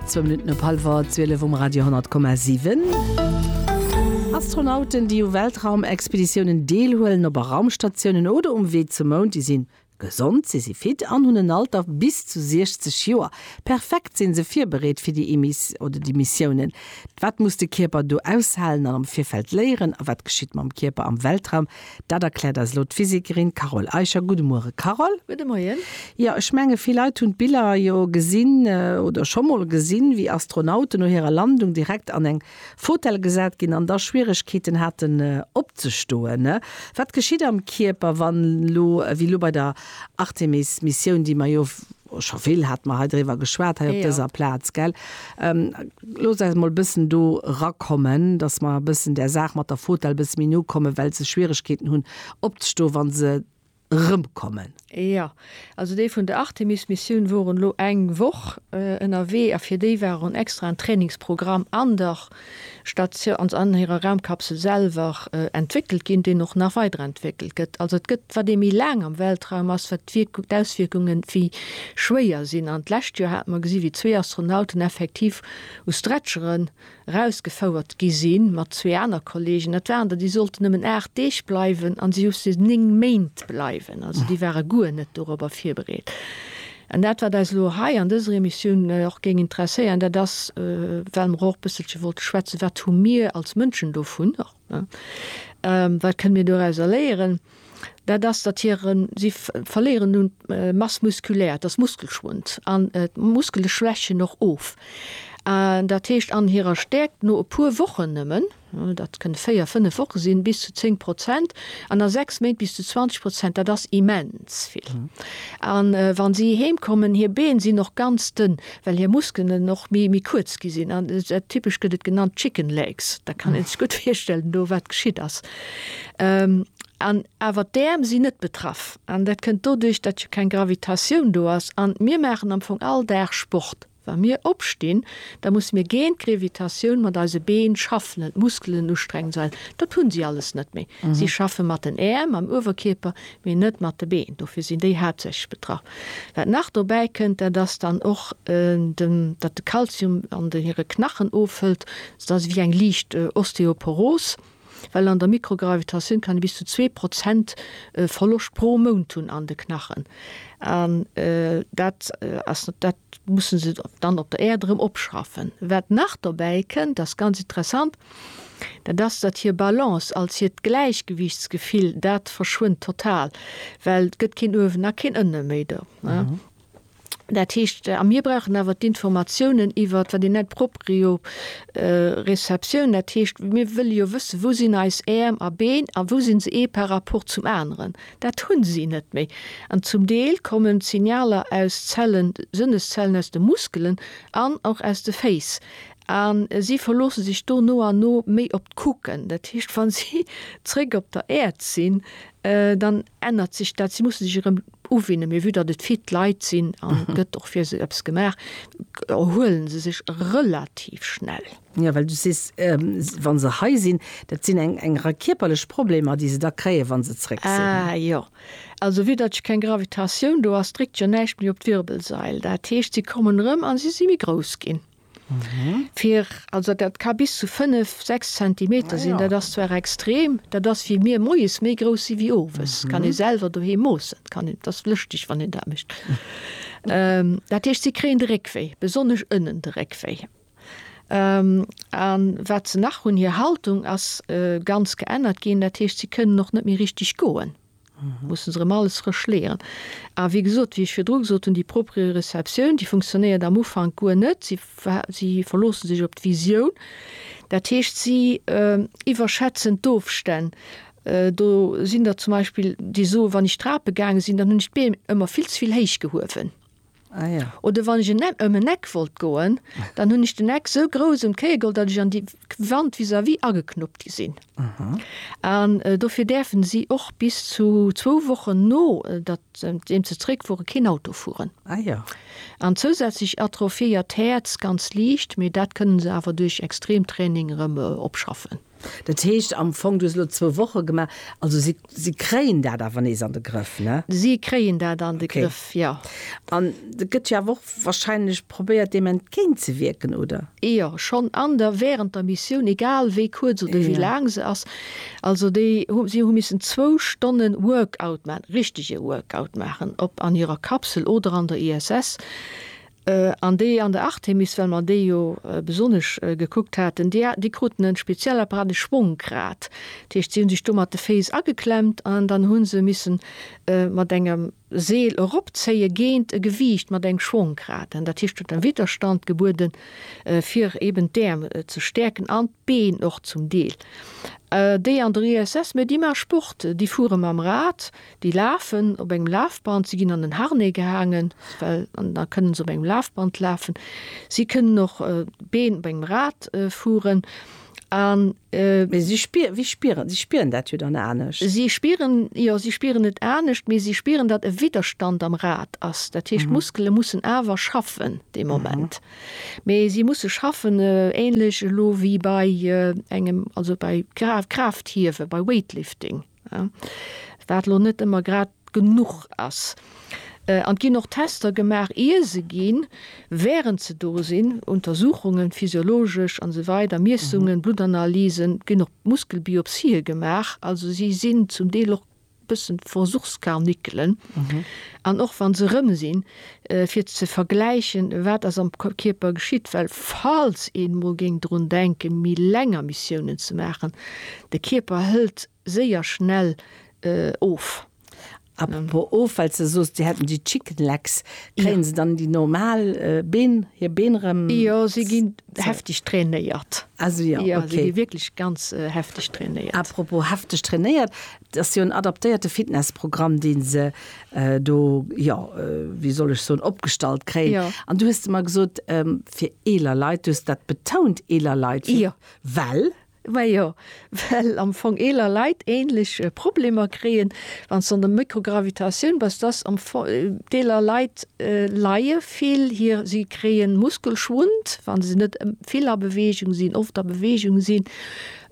Zwou Minutten op hallwer 12 um Radio 10,7. Astronauten, déi u Weltraumexpeditiounen deelhuelen, op a Raumstatiounen oder um Wee zum Mound, déi sinn gesond, si si fit an hunn en Alter bis zu 60 Joer. Perfekt sinn se virbereet fir déi Mis oder déi Missiounen. Wat muss de Kierper do aushalen an am Virfeld léieren a wat geschitt mam Kierper am Weltraum? Dat erkläert eis elo d'Physikerin Carole Eicher. Gudde Muere Carole. Gudde Moien. Jo, ech menge vill Leit hunn d'Biller jo gesinn oder scho mol gesinn, wéi Astronauten no hirer Landung direkt an eng Fotell gesat ginn an da Schwieregkeeten haten opzestoen. Wat geschitt am Kierper, wann elo, wéi elo bei der Artemis-Missioun, déi mer jo Oh, scho vill hate mer hei driwwer geschwat, hei op dëser Plaz, gell? Loosst eis emol e bëssen do erakommen, dass mer e bëssen där Saach mat der Fotell e bësse méi no kommen, well se Schwieregkeeten hunn, opzestoen, wa se erëmkommen. Jo, also déi vun der Artemis-Missioun woren elo eng Woch ënnerwee a fir déi war en extraen Trainingsprogramm an der. Stat cia ons an hirer Raumkapsel selwer entwéckelt ginn, deen och nach weiderentwéckelt gëtt. Also et gëtt, wat ee méi laang am Weltraum ass, wat d'Wierkung, d'Auswierkunge méi schwéier sinn. An d'lescht Joer hate mer gesi wéi zwee Astronauten effektiv u Stretchere rausgefouert gi sinn, mat zwee aner Kollegen. Dat waren der, déi sollten nëmmen 8 Deeg bleiwen, a si hu se 9 Méint bleiwen. Also déi ware guer net dorobber virbereet. An dat, wat eis elo hei an dëser Emissioun och géing interesséieren, dat ass, well mer och e bësselche wollte schwätzen, Wat hu mir als Mënschen dovun och? Wat kënne mir dorauser léieren? Dat ass, datt hiren, si verléieren un Masse musculaire, et ass Muskelschwund an d'Muskele schwächen och of. Dat heescht, an hirer Stäerkt, no e puer Wochen nëmmen, Dat kënne véier, fënnef Woche sinn, bis zu zéng Prozent, an a sechs Méint bis zu 20 Prozent. Dat ass immens vill. A wa si heemkommen, hir Been sinn och ganz dënn, well hir Muskelen och méi méi kuerz gi sinn. An typesch gëtt et genannt chicken legs. Da kann ee sech gutt virstellen do, wat geschitt ass. An awer d'Äerm sinn net betraff. An dat kënnt doduerch, datt jo keng Gravitatioun do ass. An mir maachen am Fong all Dag Sport. Wa mir opstinn, da musse mir géint d'Grevitatioun mat eise Been schaffen an d'Muskelen ustrengen, well dat hunn si alles net méi. Si schaffe mat den Äerm am Uewerkierper, mee net mat de Been. Dofir sinn déi haaptsächlech betraff. Wat nach dobäi kënnt, dat ass dann och, datt de Kalzium an hire Knachen ofhëlt. Dat ass ewéi eng liicht Osteoporos. Well an der Mikrogravitatioun kann ee bis zu zwee Prozent Verloscht pro Mount hunn an de Knachen. An dat ass, dat musse se dann op der Äerd erëm opschraffen. Wat nach dobäi kënnt, ass ganz interessant, dat ass, datt hir Balance, als hiert Gläichgewiichtsgefill, dat verschwënnt total, well et gëtt keen uewen a keen ënne méi do. Dat heescht, a mir brauchen awer d'Informatiounen iwwert, wat een nennt d'Proprioceptioun, dat heescht, mir wëlle jo wëssen, wou sinn eis Äerm a Been a wou si se ee par rapport zum aneren. Dat hu si net méi. An zum Deel kommen d'Signaler aus Zellen, Sënneszellen aus de Muskelen an och aus de Féiss. A si verloosse sech do no an no méi op d'Kucken. Dat heescht, wa si zréck op der Äerd sinn, dann. ännert sech dat. Si musse sech erëm uwinnen, mee vue datt et fit Leit sinn an et gëtt och fir se eppes gemaach, erhuele se sech relativ schnell. Jo, well du sees, wa se hei sinn, dat sinn eng eng Rei kierperlech Problemer, déi se da kréien, wa se zréck sinn. Ah jo, also vue datt jo keng Gravitatioun do ass, dréckt jo näischt méi op d'Wirbelsail. Dat heescht, si kommen erëm a si si méi grouss ginn. Fir, also dat ka bis zu 5, 6 Zentimeter sinn. Dat ass zwar extrem, dat ass wéi mir moies méi grouss si wéi owes. Kann ee selwer doheem moossen, et kann een, et ass lëschteg wann een dat mécht. Dat heescht, si kréien de Réckwéi, besonnesch ënnen de Réckwéi. An wat se nach hunn, hir Haltung ass ganz geännert ginn, dat heescht, si kënnen och net méi richteg goen. Mussen se rëm alles frësch leeren. A wéi gesot, wéi ech virdru gesot hunn, déi Proprioceptioun, déi funktionéiert am Ufank guer net. Si, si verloosse sech op d'Visioun. Dat heescht, si iwwerschätzen d'Ofstänn. Do sinn der zum Beispill, déi soen, wann ech d'Trape gaange sinn, dann hunn ech d'Beem ëmmer vill ze vill héich gehuewen. Ah, ja. Oder wann ech en Eck, ëm en Eck wollt goen, dann hunn ech den Eck sou grouss un d'Kéier geholl, datt ech an déi Wand vis-à-vis ageknuppt gi sinn. An dofir däerfen si och bis zu zwou Wochen no datt, deem se zeréckfueren, keen Auto fueren. Ah, ja. An zousätzlech atrophiéiert d'Häerz ganz liicht, mee dat kënnen se awer duerch Extremtraining erëm opschaffen. Dat heescht am Fong, du hues elo zwou Woche gemaach, also si, si kréien dat awer nees an de Grëff, ne? Si kréien dat an de Grëff, jo. Okay. An et gëtt jo awer och wahrscheinlech probéiert, deem entgéint ze wierken, oder? Jo, schonn an der, während der Missioun, egal wéi kuerz oder wéi laang se ass. Also déi hu, si hu missen zwou Stonne Workout maachen, richtege Workout maachen, ob an hirer Kapsel oder an der ISS. An déi an der Artemis, well mer déi jo besonnesch gekuckt haten, déi hat, déi kruten e speziell Apparat, e Schwongrad. Dat heescht, si hu sech do mat de Féiss ageklemmt an dann hu se missen mat engem Seel eropzéie géint e Gewiicht mat engem Schwongrad. Dat heescht, huet e Widderstand gebuede fir eeben d'Äerm ze stäerken an. Been och zum Deel, déi an der ISS, mee déi maache Sport, déi fuere mam Rad, déi lafen op engem Lafband, si ginn an en Harnais gehaangen, well an da kënne se op engem Lafband lafen, si kënnen och Been op engem Rad fueren an. Mee si spieren, si spieren, si spieren dat jo dann anescht? Si spieren, jo, si spieren et anescht, mee si spieren, datt e Widderstand am Rad ass, dat heescht d'Muskele mussen awer schaffen dee Moment. Mee si musse schaffen, ähnlech elo wéi bei engem, also bei Kraaft-Kraaft-Hiewe, bei Weightlifting, wat elo net ëmmer grad genuch ass. An et ginn och Tester gemaach, ier se ginn, während se do sinn, Untersuchungen, physiologesch an esou weider Miessungen, Bluttanalysen, et ginn och Muskelbiopsië gemaach. Also si sinn zum Deel och bëssen Versuchskarnickelen an och wann se erëm sinn fir ze vergläichen wat ass am Kierper geschitt, well falls een emol géing drun denken méi länger Missiounen ze maachen, de Kierper hëlt séier schnell of. Apropos of, well s de soos déi hätten déi Chicken Legs, kréien se dann déi normal Been, hir Been erëm? Jo, si ginn Hefteg trainéiert. Also jo, okay. Si gi wierklech ganz hefteg trainéiert. Apropos hefteg trainéiert, et ass jo en adaptéierte Fitnessprogramm, dee se do, jo, wéi soll ech soen, opgestallt kréien. Jo. An du hues de mer gesot, fir eeler Leit, du hues dat betount, eeler Leit. Jo. Well? Majo, well am Fong eeler Leit ähnlech Problemer kréien, wann se an der Mikrogravitatioun bass, dass am Fong d'eeler Leit leie vill hir, si kréien Muskelschwund, wann se net vill a Bewegung sinn, oft a Bewegung sinn.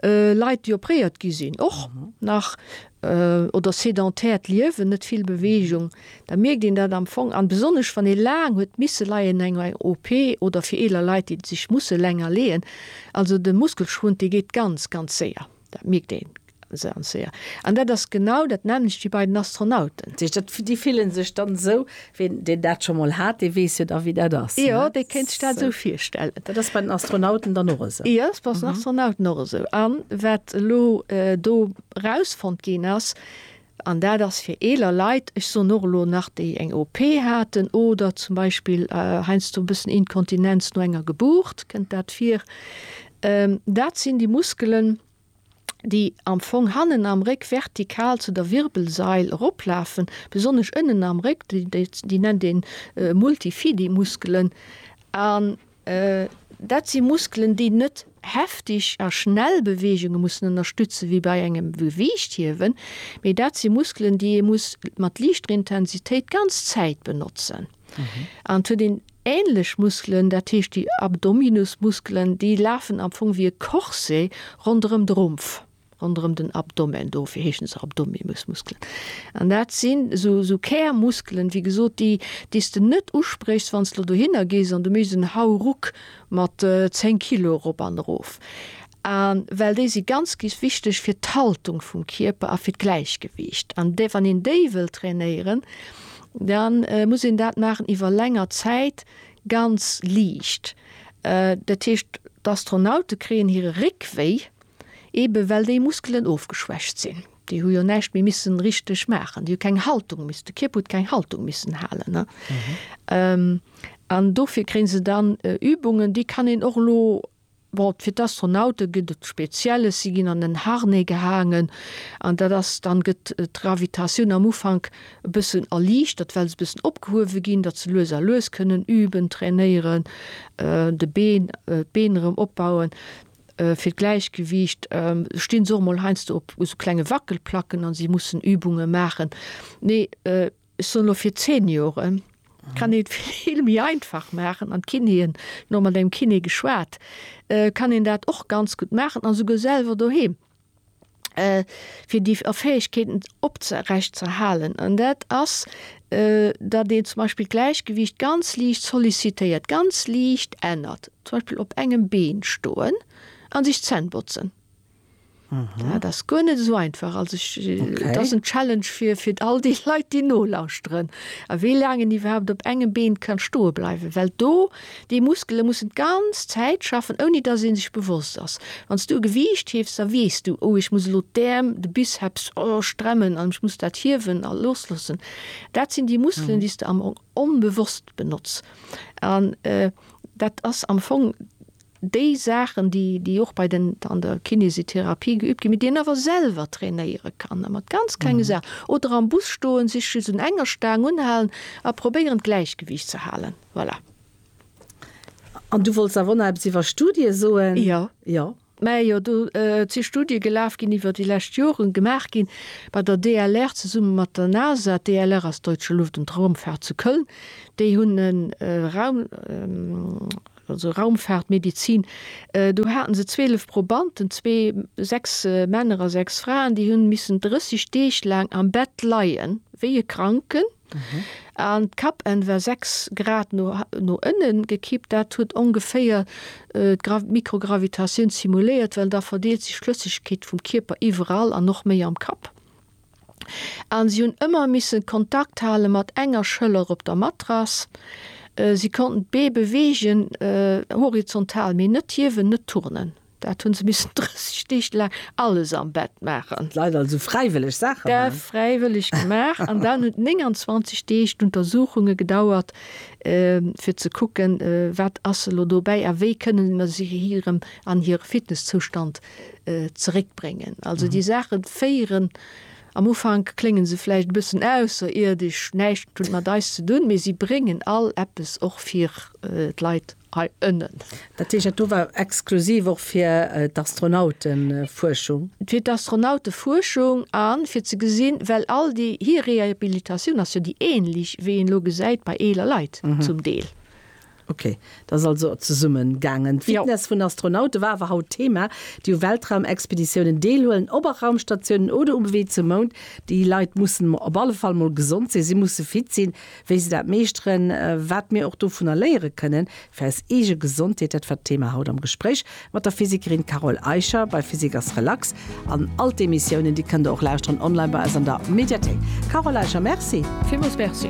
Leit, déi opréiert gi sinn, och nach. oder sedentäert Liewen, net vill Beweegung, da mierkt een dat am Fong an besonnesch wann ee laang huet misse leien no enger OP oder fir eeler Leit, déi sech musse länger leeën. Also de Muskelschwund, dee geet ganz, ganz séier. Dat mierkt een ganz séier. An dat ass genau dat nämmlecht wéi bei den Astronauten. Déi fillen sech dann esou, ween deen dat scho mol hat, dee weess jo da wéi dat ass. Jo, dee kéint sech dat esou virstellen. Dat ass bei den Astronauten dann och esou? Jo, dat ass bei den Astronauten och esou. An wat elo do Erausfonnt ginn ass, an dat ass fir eeler Leit, ech soen och elo nach, déi eng OP haten oder zum Beispill heiansdo e bëssen Inkontinenz no enger Gebuurt, kënnt dat vir, dat sinn déi Muskelen, déi am Fong hannen am Réck vertikal zu der Wirbelsail eroplafen, besonnesch ënnen am Réck, déi nennt ee Multifidi-Muskelen. Dat si Muskelen, déi net heftig a schnell Beweegunge mussen ënnerstützen, wéi bei engem Gewiichthiewen, mee dat si Muskelen, déi ee muss mat liichter Intensitéit d'ganz Zäit benotzen. An et huet een änlech Muskelen, dat heescht déi Abdominusmuskelen, déi lafen am Fong wéi e Corset ronderëm de Rumpf. ronderëm den Abdomen, dofir heeschen se Abdominusmuskelen. An dat sinn esou, esou Kärmuskelen, wéi gesot, déi, déi s de net uspréchs, wann s de elo dohinner gees an du méchs en Hauruck mat 10 Kilo erop an erof. A well déi si ganz, gs wichteg fir d'Haltung vum Kierper a fir d'Gläichgewiicht. An dee, wann een déi wëll trainéieren, da muss een dat maachen iwwer länger Zäit, ganz liicht. Dat heescht, d'Astronaute kréien hire Réckwéi, Eben well déi Muskelen ofgeschwächt sinn. Déi hu jo näischt méi missen richteg maachen. Déi hu keng Haltung miss, de Kierper huet keng Haltung missen halen, ne? An dofir kréien se dann Übungen, déi kann een och elo, bon, fir d'Astronaute gëtt et Spezielles, si ginn an en Harnais gehaangen an dat ass dann, gëtt d'Gravitatioun am Ufank e bëssen erliichtert, well se e bëssen opgehuewe ginn, datt se lues a lues kënnen üben, trainéieren, de Been, d'Been erëm opbauen. fir d'Gläichgewiicht stinn se och mol heiansdo op esou klenge Wackelplacken a si mussen Übunge maachen. Nee, ech soen elo fir d'Seniore kann ee et vill méi einfach maachen an d'Kinéen, elo mat engem Kiné geschwat, kann een dat och ganz gutt maachen a souguer selwer doheem. fir déi Fäegkeeten oprecht ze erhalen. An dat ass, datt een zum Beispill d'Gläichgewiicht ganz liicht sollicitéiert, ganz liicht ännert, zum Beispill op engem Been stoen an sech d'Zänn botzen. Dat ass guer net esou einfach. Also ech, dat ass en Challenge fir, fir all déi Leit, déi nolauschteren, a wéi laang een iwwerhaapt op engem Been ka stoe bleiwen, well do Déi Muskele mussen d'ganz Zäit schaffen, ouni dass ee sech bewosst ass. Wann s du e Gewiicht hiefs, da weess du, Oh, ech muss elo d'Äerm, de Bizeps, oh, stremmen an ech muss dat hiewen a loosloossen. Dat sinn déi Muskelen, déi s de am Fong onbewosst benotz. An dat ass am Fong. déi Saachen, déi, déi och bei den, an der Kinésithérapie geübt ginn, mee déi een awer selwer trainéiere kann, mat ganz klenge Saachen, oder am Bus stoen, sech just un enger Staang unhalen a probéieren, d'Gläichgewiicht ze halen. Voilà. An du wollts awer och nach eppes iwwer Studie soen? Jo. Jo. Mä jo, do si Studie gelaf ginn iwwer déi lescht Joren, gemaach gi bei der DLR zesumme mat der NASA. D'DLR ass Deutsche Luft und Raumfahrt zu Köln. Déi hunn e Raum, also Raumfaartmedizin, do haten se 12 Probanden, zwee, sechs Männer a sechs Fraen, déi hunn missen 30 Deeg laang am Bett leien, wéi e Kranken. An d'Kappenn war 6 Grad no no ënnen gekippt. Dat huet ongeféier d'Gra d'Mikrogravitatioun simuléiert, well da verdeelt sech d'Flëssegkeet vum Kierper iwwerall an och méi am Kapp. an si hunn ëmmer missen Kontakt hale mat enger Schëller op der Matrass. Si konnten d'Bee beweegen, horizontal, mee net hiewen, net turnen. Dat hunn se missen 30 Deeg laang alles am Bett maachen. D'Leit also fräiwëlleg Saache maachen. Dat fräiwëlleg gemaach an dann hunn 29 Deeg d'Untersuchunge gedauert, fir ze kucken, wat ass elo dobäi a wéi kënnen mer si hirem an hire Fitness-Zoustand zeréck bréngen. Also déi Saache féieren am Ufank kléngen se vläicht e bëssen ausserierdesch, näischt hunn mat eis ze dunn, mee si bréngen all eppes och fir d'Leit hei ënnen. Dat heescht, dat do war exklusiv och fir d'Astronautefuerschung? Fir d'Astronautefuerschung a fir ze gesinn, well all déi, hir Rehabilitatioun ass jo déi änlech, wéi een elo gesäit bei eeler Leit zum Deel. Ok, dat ass also zesummen gaangen. D'Fitness vun Astronaute war awer haut Thema, déi u Weltraumexpeditiounen deelhuelen, ob a Raumstatiounen oder um Wee zum Mound. Déi Leit mussen op alle Fall mol gesond sinn, si musse fit sinn, wéi se dat meeschteren. Wat mir och dovunner léiere kënnen fir eis eege Gesondheet, dat war d'Thema haut am Gespréich mat der Physikerin Carole Eicher bei Physik ass relax. An all d'Emissiounen, déi kënnt der och lauschteren online bei eis an der Mediathéik. Carole Eicher, Merci. Villmools Merci.